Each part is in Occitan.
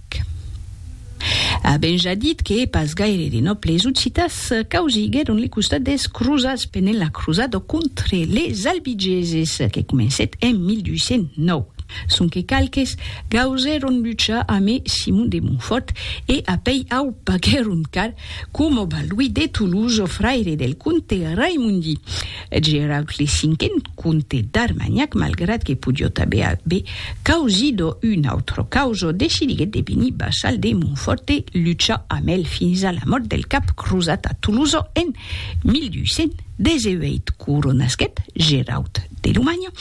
Tic-tac. Avèm ja dit que pas gaire de nòbles occitans causiguèron le costat dels crosats pendent la crosada contre les albigeses que comencèt en 1209, sonque qualques gausèron luchar amé Simon de Montfòrt e apèi au paguèron car, coma Balduí de Toulouse, fraire del comte Raimondi Geraud le Cinquen, Comte d'Armagnac, malgrat que podiot aver aver causido un autre causo, decidiguèt de venir vassal de Montfòrt e luchar amb el fins a la mòrt del cap crosat a Tolosa en 1218. Coronasquèt Geraut de Lomanha,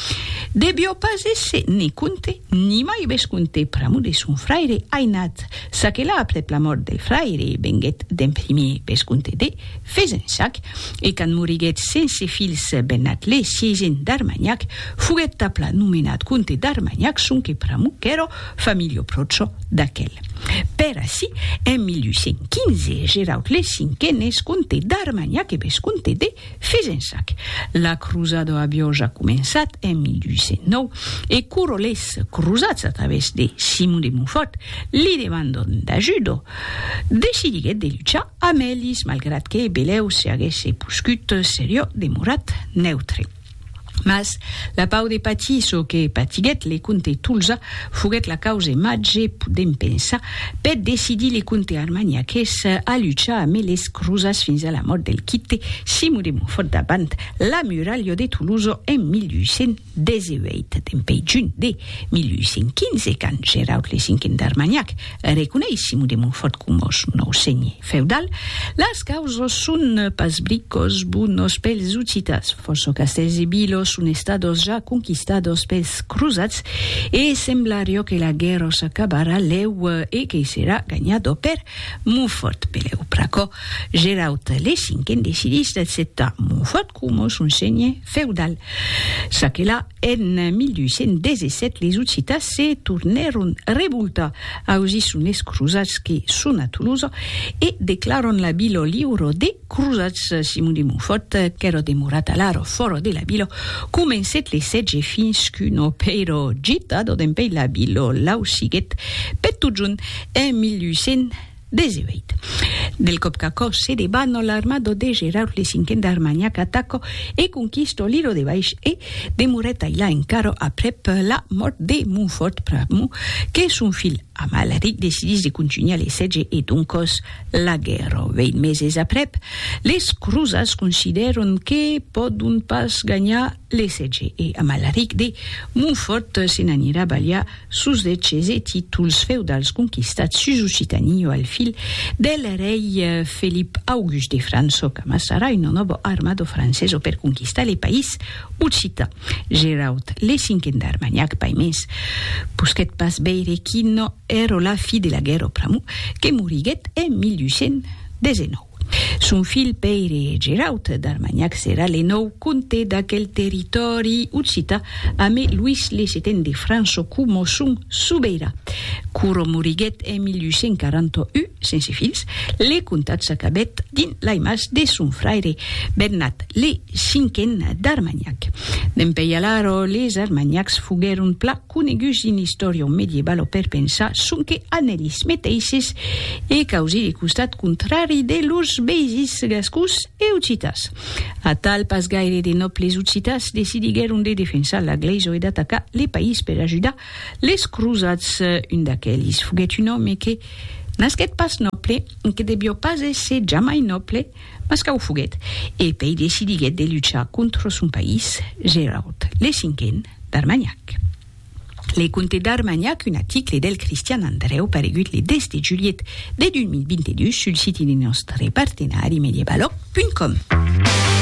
devió pas èsser ne comte, ni mai vescomte pr'amor de son fraire ainat, çaquelà aprèp la mòrt del fraire venguèt d'en primier vescomte de Fezensac, e quand moriguèt sense filhs Bennat le sièisen d'Armanhac, foguèt tapla nomenat comte d'Armanhac sonque pr'amor qu'èra familha pròcha d'aquel. Per ací, en 1815, Geraud le Cinquen es comte d'Armanhac e vescomte de Fezensac. La crosada aviá ja començat en 1809, e quora les crosats, a través de Simon de Montfòrt, li demandon d'ajuda, decidiguèt de luchar Amelis, malgrat que Belèu se aguèsse poscut seriò, demorat neutre. Mas la pau de patir çò que patiguèt le comte Tolza foguèt la cause màger, podèm pensar, per decidir le comte armagnaqués a luchar amé les crosats fins a la mòrt del quite Simon de Montfòrt davant la muralha de Tolosa en 1800. 18 dempèi junh de 1815, quand Geraud le Cinquen d'Armagnac reconeis Simon de Montfòrt coma son nòu senhe feudal, las causas son pas bricòs bonos pels Occitas, fòrça castèls e vilas son estadas ja conquistadas pels crosats e semblariá que la guèrra s'acabarà lèu e que serà ganhada per Montfòrt. Pelèu pr'aquò, Geraud le Cinquen decidís d'acceptar Montfòrt coma son senhe. feudal. Çaquelà, en 1217 les Occitans se tornèron revoltar ausir son es crosats que son a Tolosa e declaran la vila liura des crosats. Simon de Montfòrt, qu'èra demorat alara fòra de la vila, comencèt le sètge fins qu'una pèira gitada dempèi la vila l'ausiguèt per totjorn en 1200. 18. Del còp qu'aquò se debat, no l'armado de Geraud le cinquen d'Armagnac ataco e conquisto l'ilo de Baish e demorèt ailà encara aprèp la mòrt de Montfort pr'amor que son filh Amalric decidís de contunhar le sètge e doncòs la guèrra. Vèint meses aprèp, les crosats considèron que pòdon pas ganhar L'ESG e Amalaric de Montfòrt se n'anirà balhar sus de ches e títols feudals conquistats sus Occitanie o al fil del rei Felip August de França o qu'amassarà una nòva armada francesa per conquistar le país occitan. Geraud le Cinquen d'Armagnac Paimés posquèt pas veire quina èra la fi de la guèrra pr'amor que moriguèt en 1819. Son filh Pèire Geraut d'Armanhac serà le nòu comte d'aquel territòri occità amé Luís le Seten de França coma son sobeirà. Quora moriguèt en 1841 sense filhs, le comtat s'acabèt dins lai mas de son fraire Bernat le Cinquen d'Armanhac. Dempèi alara les Armanhacs foguèron pla. coneguts dins l'istòria medievalo per pensar sonque a nelis meteisses e causir le costat contrari de lors veisins gascons e occitas. Atal, pas gaire de nòbles occitas decidiguèron de defensar la glèisa e d'atacar le país per ajudar les crosats. Un d'aquelis foguèt un òme que nasquèt pas nòble e que devió pas èsser jamai nòble, Mas qu'a o foguèt, e pei decidiguèt de luchar contra son país, Gerard, le cinquen, d'Armagnac. Le conte d'Armagnac, un aticle del Cristian Andrèu paregut le 10 de julhet de 2022 sul siti de nòstre partenari medievalòg.com.